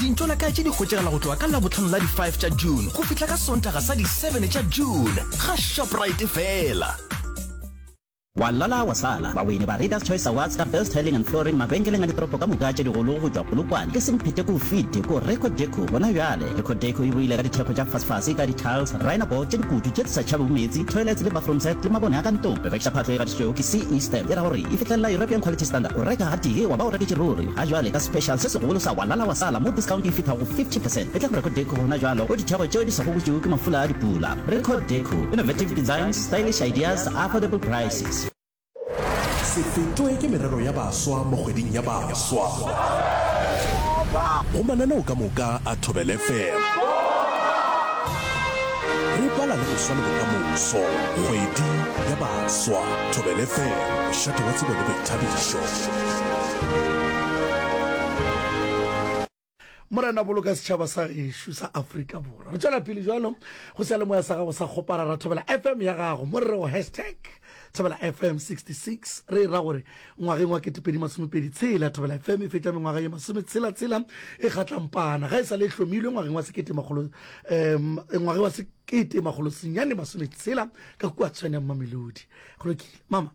Dintlo la kae tše di hwetšagala go tloga ka Labohlano la di 5 tša June go fihla ka Sontaga sa di 7 tša June ga Shoprite fela. Wa lala wa sala, baweni ba Readers Choice Awards ka Best Tiling and Flooring mabenkeleng a ditoropo ka moka tše digolo go tšwa Polokwane ke semphete ko fite ko Reco Deco gona bjale. Reco Deco e boile ka dithekgo tša fasfase ka di-tiles, rhino board tše dikutu tše di sa tšhabego meetse, toilets le bathroom set le mabone a ka ntlong. Rekiša phatlo e gatišitšwego ke CE stamp e ra gore e fihlelela European Quality Standard. O reka gatee wa ba o reketše ruri. Ga jwale ka special se segolo sa Walala wa Sala mo discount e fithago 50 percent e tla go Record Deco gona jwalo go ditheko tšeo di sa gokotšwego ke mafula a dipula. Record Deco, innovative designs, stylish ideas, affordable prices. Se fetwe ke merero ya baswa mo kgweding ya baswa. Go mananeo ka moka a Thobel FM. Re bala le go swale bokamoso. Kgwedi ya baswa. Thobel FM, mošate wa tsebo le boithabišo. Morena, boloka setšhaba sa gešo sa Afrika Borwa. Re tšwela pele jalo go seyalemoya sa gago sa kgopara ra Thobela FM ya gago mo re rego hashtag Thobela FM 66 re e ra gore ngwageng wa 2026 Thobela FM e fetša mengwaga ye masome tshela tshela e kgatlampana ga e sa le e hlomilwe ngwageng wa sekete makgolo um ngwageng wa sekete makgolo senyane masome tshela ka kua tshwaneng mamelodi go lokile mama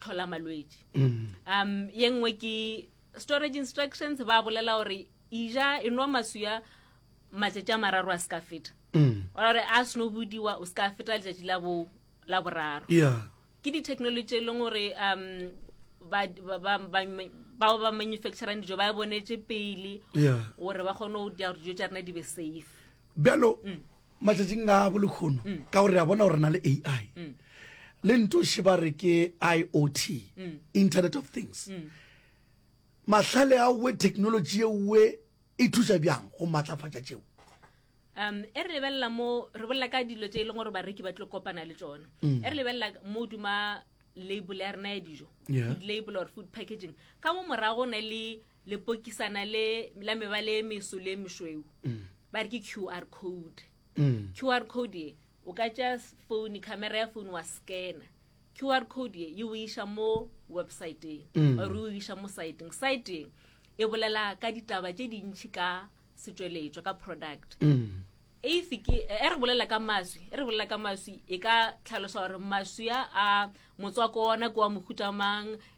tlhola malwetši um ye nngwe ke storage instructions ba bolela gore ija e nwa maswia matšatši a mararo a se ka feta ore a seno bodiwa o se ka feta letšatši la bo la boraro yeah ke di-technology e leng gore um ba- ba- ba- ba- bao ba manufacturang dijo ba e bonetse pele yeah gore ba kgone go dira gore dijo tša rena di be safe bjalo matšatšing a bo lekgono mm. ka gore re a bona gore na le ai mm. le ntoše ba re ke iot mm. internet of things mm. mahlale a we technology ewe e thusa bjang go maatlafatša tšeo um e re lebelela mo re bolela ka dilo tse e leng gore bareki ba tlo kopana le tsone mm. e re lebelela mo duma label ya rena ya dijo label or food packaging ka mo morago ne le lepokisana le la mebale e meso le e mešweu mm. ba re ke qr code mm. qr code ye o ka tšea phone camera ya phone wa scanner qr code ye o iša mo websiteng mm. or o iša mo siteng siteng e bolela ka ditaba tše dintšhi ka setšweletšwa ka product mm. if ke e re bolela ka maswi e re bolela ka maswi e ka tlhalosa gore maswi a motswako ona ke wa mohutamang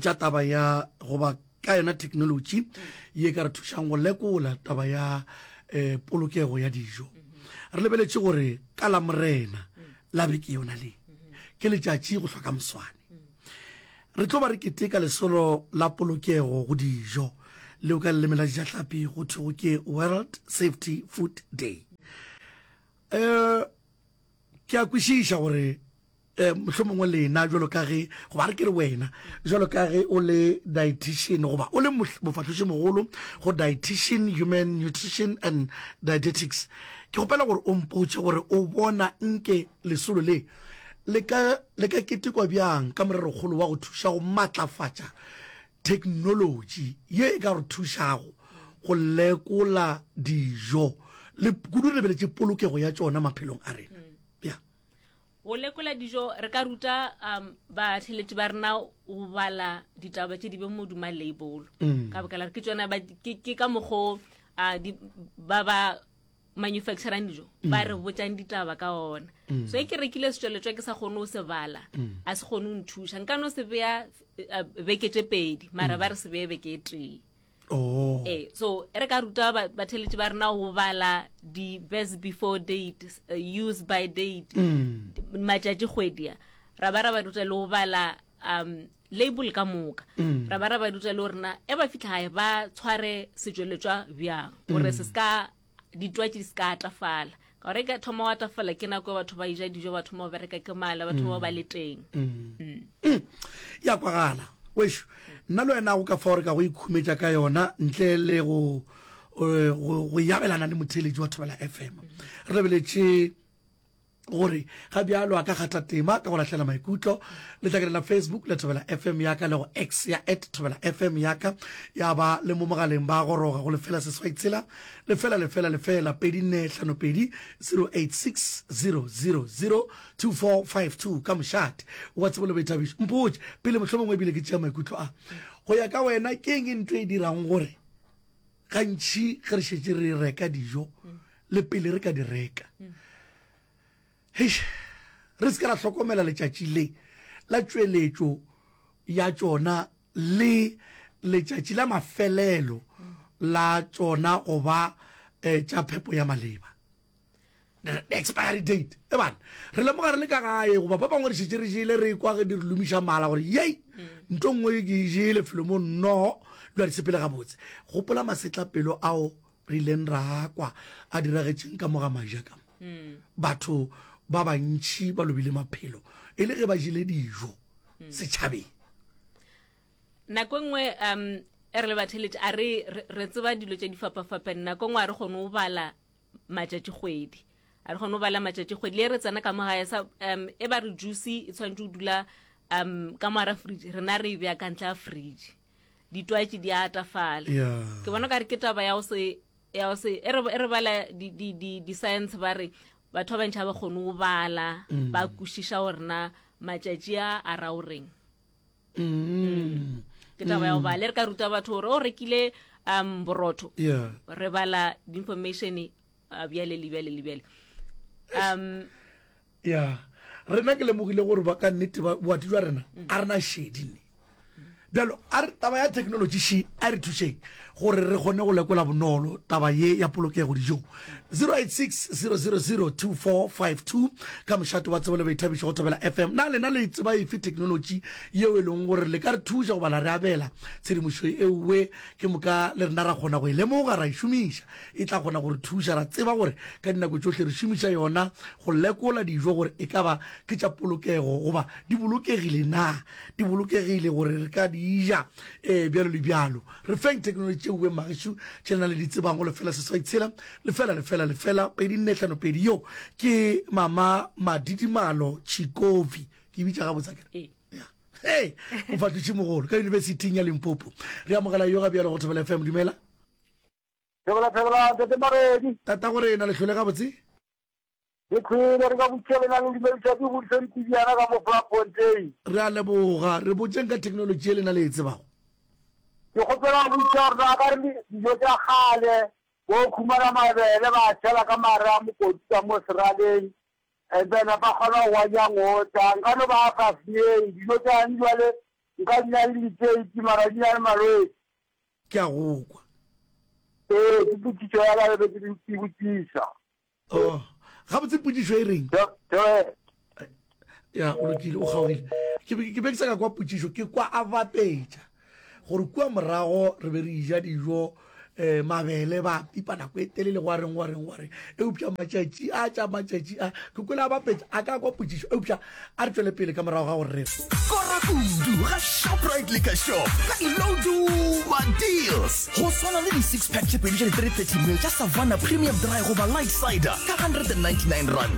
tša taba ya goba ka yona technology ye ka re thušang go lekola taba ya um polokego ya dijo re lebeletše gore ka la morena la beke yona le ke letšatši go hloka moswane re tlo ba re keteka lesolo la polokego go dijo leo ka leleme la dijahlapi go thwego ke world safety food day um Ke a kwešiša gore um mohlomongwe lena jalo ka ge goba re ke re wena jalo ka ge o le dietitian goba o le mofahloši mogolo go dietitian human nutrition and dietetics ke gopela gore o mpotše gore o bona nke lesolo le le ka ketekwa bjang ka morerokgolo wa go thuša go matlafatša Theknolotši ye e ka re thušago go lekola dijo le kudu re lebeletše polokego ya tšona maphelong a rena. Ya. Go lekola dijo re ka ruta um, batheletši ba rena go bala ditaba tše di beng moduma leibolo. Ka baka la gore ke tšona ba- ke ke ka mokgo a di- ba ba manufacturang dijo mm. ba re botšang ditaba ka ona mm. so e ke rekile setsweletšwa ke sa kgone o se bala mm. a se kgone o nthuša nka no se beya eh, beke tše pedi mara ba re se beye beke e tee oh. e so e re ka ruta batheletši ba rena go bala di-best before date uh, use by date matšatši kgwedia ra ba ra ba ruta le go bala um label ka moka mm. ra ba ra ba ruta le gore na e ba fitlha gae ba tshware setsweletswa bjang gore mm. se se ka ditwatši di se ka atafala ka gore ka thoma wa tafala ke nako batho ba ija dijo batho mo bereka ke mala batho ba ba le teng mm. Mm. Mm. ya kwagala wesho nna le wena go ka fa gore ka go ikhumetša ka yona ntle le go eh, go yabelana le motheletši wa thobela f m re lebeletse gore ga bjalo a ka kgatha tema ka go lahlela maikutlo le tla kenela facebook le thobela fm ya ka le go x ya at thobela fm ya ka ya ba le mo mogaleng ba goroga go lefela seswai tshela lefela lefela lefela pedi nne hlano pedi 0860002452 ka mošate wa tsebo le boithabišo mpotse pele mohlomongwe ebile ke tšea maikutlo a go ya ka wena ke eng e nto e dirang gore gantši ge re šetse re reka dijo le pele re ka di reka heish re se ka ra hlokomela letšatši le la tšweletšo ya tšona le letšatši la mafelelo la tšona go ba um tša phepo ya maleba expiry date e bana re lemoga re le ka gae goba ba bangwe re šetse re jele re kwa ge di re lomiša mala gore yei mm. nto nngwe ke e jele felo mo nnogo dula di sepele gabotse gopola masetla pelo ao re ileng ra kwa a diragetseng ka moga majaka mm. batho ba bantšhi ba lobile maphelo e le ge ba jele dijo mm. setšhabeng nako nngwe um e re le batheletše a re re tseba dilo tše di fapafapane nako nngwe a re kgone go bala matšatšikgwedi a re kgone go bala matšatšikgwedi le re tsena ka mo gae sa um e ba re juice e tshwanetse go dula um ka moara fridge rena re e bea ka ntle ya fridge ditwatši di atafala ke bona ka re ke taba ya go se ya go se e re e bala di-science ba re batho ba bantšha ba kgone go bala mm. ba kwešiša gorena matšatši a a ra o reng mm. ke taba ya go bale re ka ruta batho gore o rekile um borotho yeah. re bala information uh, bjale le bjale le bjale um yeah rena ke lemogile gore ba ka nnete boati jwa rena a rena shedi ne bjalo a re taba ya technology she a re thušeng gore re kgone go lekola bonolo taba ye ya polokego dijong 0860002452 ka mošate wa tsebo le baithabišo go thobela fm na lena le tseba efe thekenolotši yeo e leng gore le ka re thuša goba la re abela tshedimošo eoe ke moka le rena ra kgona go e lemoga ra e šomiša e tla kgona gore thuša ra tseba gore ka dinako tšohle re šomiša yona go lekola dijo gore e ka ba ke tša polokego goba di bolokegile na di bolokegile gore re ka di ja Ee, bjalo le bjalo. Re feng theknolotši tšeo beng bagešu tše le na le di tsebang go lefela seswai tshela lefela lefela lefela pedi nne hlano pedi. Yo ke mama Madidimalo Tšhikovi, ke bitša gabotsa kere? Ee. Hey, mofatošimogolo ka yunibesithing ya Limpopo. Re amogela yoga bjalo go Thobela FM. Dumela. Thobela, thobela, Ntate Maredi. Tata gore na le hlole gabotse? Re thwele re ka botšelenang dilo tša di godiša dipidiyana ka mo Vlakfontein. Re a leboga. Re botšeng ka theknolotši ye lena le e tsebago. Ke kgopela go botša gore na ka re le dijo tša kgale bo khumana mabele ba a tšhela ka mare a mokoti ka mo seraleng and then ba kgona go wanya ngota nka no ba fa fiyeng dijo tša gane jwale nka di na le liteiti mara di na le malwetsi. Ke a go kwa. Ee ke potšišo ya ka e be ke e botšiša. Oh, gabotse potsišo e reng? ya o lokile o kgaogile ke be ke be ke sa ka kwa potsišo ke kwa a bapetša gore kua morago re be re ija dijo eh mabele ba pipa nako e telele go a reng go a reng go a reng eupša matšatši a tša matšatši a ke kwele a bapetša a ka kwa potsišo eupša a re tšwele pele ka morago ga gore re kora kudu ga shoprite le ka shop ka diloduwa deals go swana le di-six pack tše pedi tša di-330 mil tša savannah premium dry goba light cider ka 199 rand